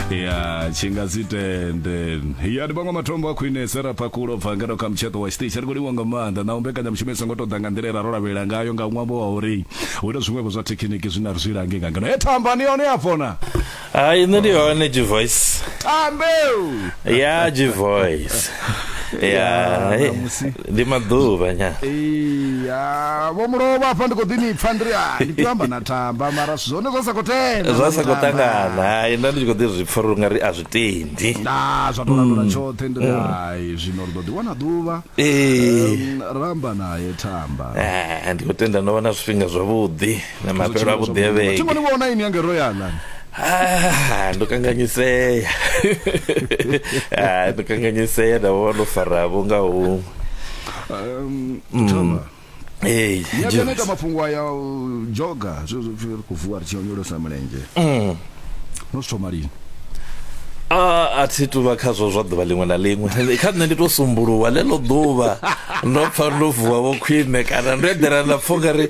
ya tshi nga si tende ya ndi vhaṅwe matombo a khwine sera phakulo bva ngeno kha mutsheṱo wa tshiṱitshi ri khou livha nga maanḓa na u mbekanyamushumo i songo tou ḓa nga nḓila era ro lavhelela ngayo nga ṅwambo wa uri hu na zwiṅwevho zwa thekhiniki zwine a ri zwi lange nga ngeno e thamba ni yone ya fona hayi nṋe ndi hone gvoice tambeu ya gvoice ya Ya, ṋamusi. ndi maḓuvha nya iya vho mulovha hafha ndi khou ḓi ni pfa ndiri a ndi amba na tamba mara zwithu zwone zwa sa khou tenda zwa sa khou tangana hai nda ndi tshi khou ḓi zwi pfa ri nga ri a zwi tendi na zwa tou landula mm. tshoṱhe ndiri mm. hai zwino ri ḓo ḓi wana ḓuvha ramba naye tamba eh, ndi khou tenda no vha na zwifhinga zwavhuḓi na mafhelo a vhudevheke thingoni vhona ini yange ro yalan ah, ndo kanganyisea ah, ndo kanganyisea nda vho ndo faravo nga huṅwe um, mm. Hey, nyakaneta mafhungo aya joga zwezvopfi ri khou vuwa ri tshi onyolosa mulenzhe mm. no zwi thoma lini a a thi tu vha khazwo zwa ḓuvha ḽiṅwe na ḽiṅwe kha nṋe ndi to sumbuluwa ḽeḽo ḓuvha ndo pfa ndo vuwa vho khwine kana ndo eḓela nda pfha ungari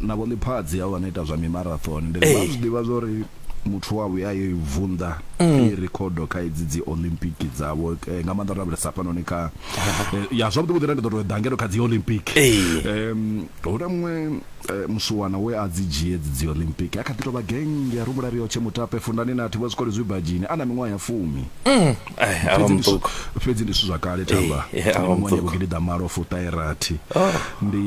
na vho ḽiphadzi havho vha no ita zwa mimarathon ndi ri vha zwi ḓivha zwa uri muthu wa vhuya yo i vunḓa mm. i rikhodo kha idzi dzi olympic dzavho eh, nga maanḓa ro lavhelesa hafhanoni kha eh, ya zwavhuḓi vhuḓi ra ndi ḓo tou dangelo kha dzi olympic um hu na muṅwe eh, musuwana we a dzi dzhie dzi dzi olympic a kha ḓi tou vha genge ya rumula riyo tshe mutape fundani na thivha zwikole zwi badzhini a na miṅwaha ya fumi mm. fhedzi ndi zwithu zwa kale tamba miṅwaha ya vhugidi ḓa malo fuṱairathi oh. ndi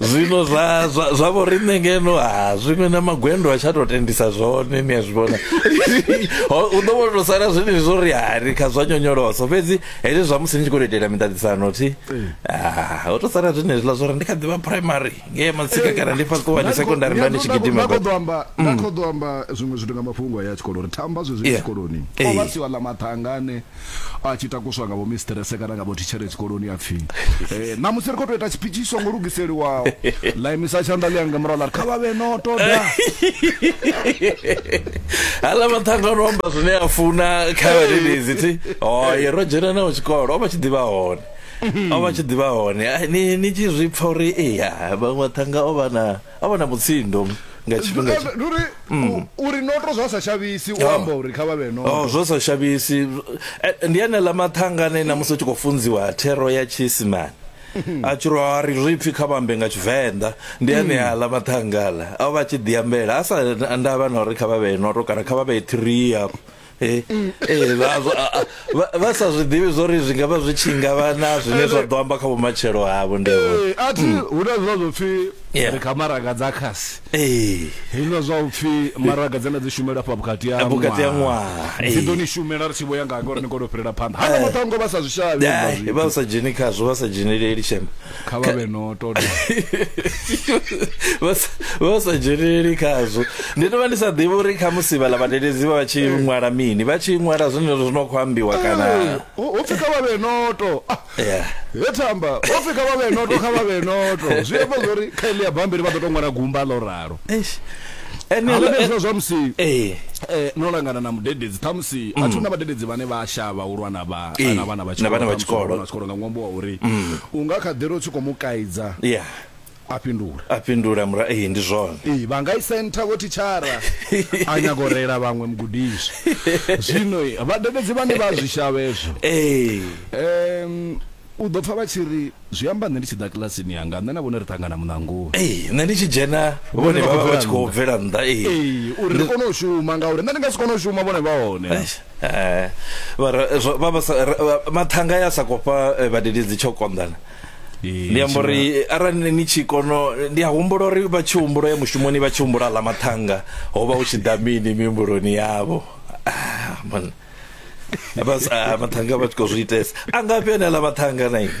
zwino zwa zwa zwa vho riṋe ngeno ha zwiṅwe na magwendo a tsha to tendisa zwone ni a zwi vhona u ḓo vhono sala zwine zwo ri hari kha zwa nyonyoloso fhedzi hezwi zwa musi ni tshi khou itela miṱaṱisano thi ho to sala zwine zwiḽa zwo ri ndi kha ḓivha primary nge matsika kana ndi fhaṱo wa ni secondary nda ni tshi gidima ba khoḓo amba na khoḓo amba zwiṅwe zwithu nga mafhungo ya tshikolo ri thamba zwezwi tshikoloni o vha si wa ḽa mathangane a tshi takuswa nga vhomistrese kana nga vhothitshere tshikoloni a pfi eh, ṋamusi ri khou tou ita tshipitshi tshi songo lugiseliwaho ḽa imisa tshanḓa ḽi yanga murahu ḽa ri kha vha vhe no toda hala maṱhanga no amba zwine a funa kha vhadededzi thi oye ro dzhena nao tshikolo o vha tshi ḓivha hone o vha tshi ḓivha hone ni tshi zwi pfa uri eya vhaṅwe maṱhanga o vha na a vha na mutsindo nga tshifhinga tsha ndi uri u- uri noto zwa sa shavhisi u Oh. amba uri kha vha vhe Oh, noto zwo sa shavhisi Eh, ndi anela mathanga ane na musi u tshi khou funziwa thero ya tshiisimani a tshi ro a ri zwi pfi kha vhambe nga tshivenḓa ndi ane aḽa mathanga aḽa a vha tshi ḓiambela a sa ndavha na uri kha vha vhee noto kana kha vha vhee thirii afho Eh, eh, vha- vha- vha- vha sa zwi ḓivhi zwori zwi ngavha zwi tshi ngavha na zwine zwa ḓo amba kha vhumatshelo havho ndevho Eh, athi hu na zwa zwopfi Mm. Yeah. ri kha maraga dza khasi ee hezwila zwa upfi maraga dzena dzi shumela afha vhukati ha Vhukati ha ṅwaha, dzi eh. ḓo ni shumela ri tshi vho ya nga ngori ni kone u fhirela phanḓa hana maṱango vha sa zwi shavhi hezwiḽa zwithu. vha sa dzheni khazwo vha sa dzheneleli shema kha vha vhe no ṱoḓa vha sa- vha sa dzheneleli khazwo ndi tovha ndi sa ḓivhi uri kha musi vhala vhadededzi vha vha tshi ṅwala mini vha tshi ṅwala zwine zwo no khou ambiwa kana hopfi kha vha vhe noto Ah, Yeah. he thamba hopfi kha vha vhe noto kha vha vhe noto zwi amba zwori kha ili ya bambiri vha ḓo to ṅwala gumba ḽo ralo Eish. Ene- hala ndi hezwa zwa musi eh eh, no langana na mudededzi ṱhamusi a thi hu na vhadededzi vhane vha a shavha u lwa na vha Ee, na vhana vha na vhana vha tshikolo. vhana vha tshikolo nga ṅwambo wa uri u nga kha ḓi ri u tshi khou mu kaidza ya a fhindula a fhindula mura ee ndi zwone ee vha nga i sentha vho thitshara a nyago u reila vhaṅwe mugudiswa zwino eh, vhadededzi vhane vha zwi shavha ezwo ee um u ḓo pfa vha tshi ri zwi amba nṋe ndi tshi ḓa kilasini yanga nṋe na vhone ri ṱangana muṋangoni ee nṋe ndi tshi dzhena vhone vha vha vha tshi khou bvela nnḓa ee ee uri ri kone u shuma ngauri nṋe ndi nga si kone u shuma vhone vha hone Eish, Eh, vha re- zwo- vha vha sa- re- vha- mathanga ya sa khou fha eh, vhadededzi tsho konḓana Ee, ndi amba uri eh, arali ni- ni tshi kono ndi a humbula uri vha tshi humbula ya mushumoni vha tshi humbula ḽa mathanga ho vha hu tshi ḓa mini mihumbuloni yavho Ah, man. Vha sa- ah, mathanga vha tshi khou zwi itesa a ngafhi ane ḽa mathanga na ini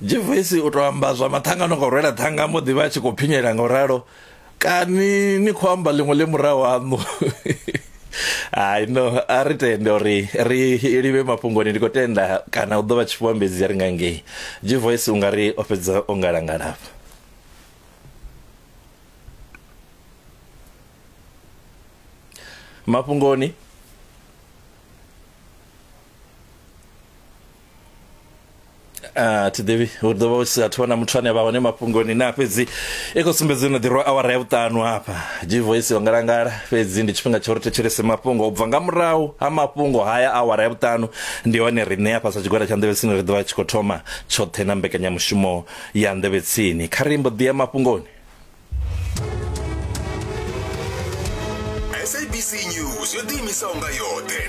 jevesi u tou amba zwa maṱhanga no ngo rwela ṱhanga mbo ḓi vha a tshi khou phinyela nga u ralo kani ni khou amba ḽiṅwe ḽe murahu haṋu hai no a ri tende uri ri livhe mafhungoni ndi khou tenda kana u ḓo vha tshifhuambedzi ri nga ngei jivoice u nga ri o fhedza o ngalangalafha mafhungoni a thi ḓivhi hu ḓo vha hu si athu vhona muthu ane vha hone mafhungoni na fhedzi i khou sumbedza no ḓirwa awara ya vhuṱanu hafha gvoice yo ngalangala fhedzi ndi tshifhinga tsha uri thetshelese mafhungo u bva nga murahu ha mafhungo haya awara ya vhuṱanu ndi hone riṋe hafha sa tshigwada tsha nḓevhetsini ri ḓovha tshi khou thoma tshoṱhe na mbekanyamushumo ya nḓevhetsini kha ri mbo ḓi ya mafhungoni SABC News yo ḓiimisaho nga yoṱhe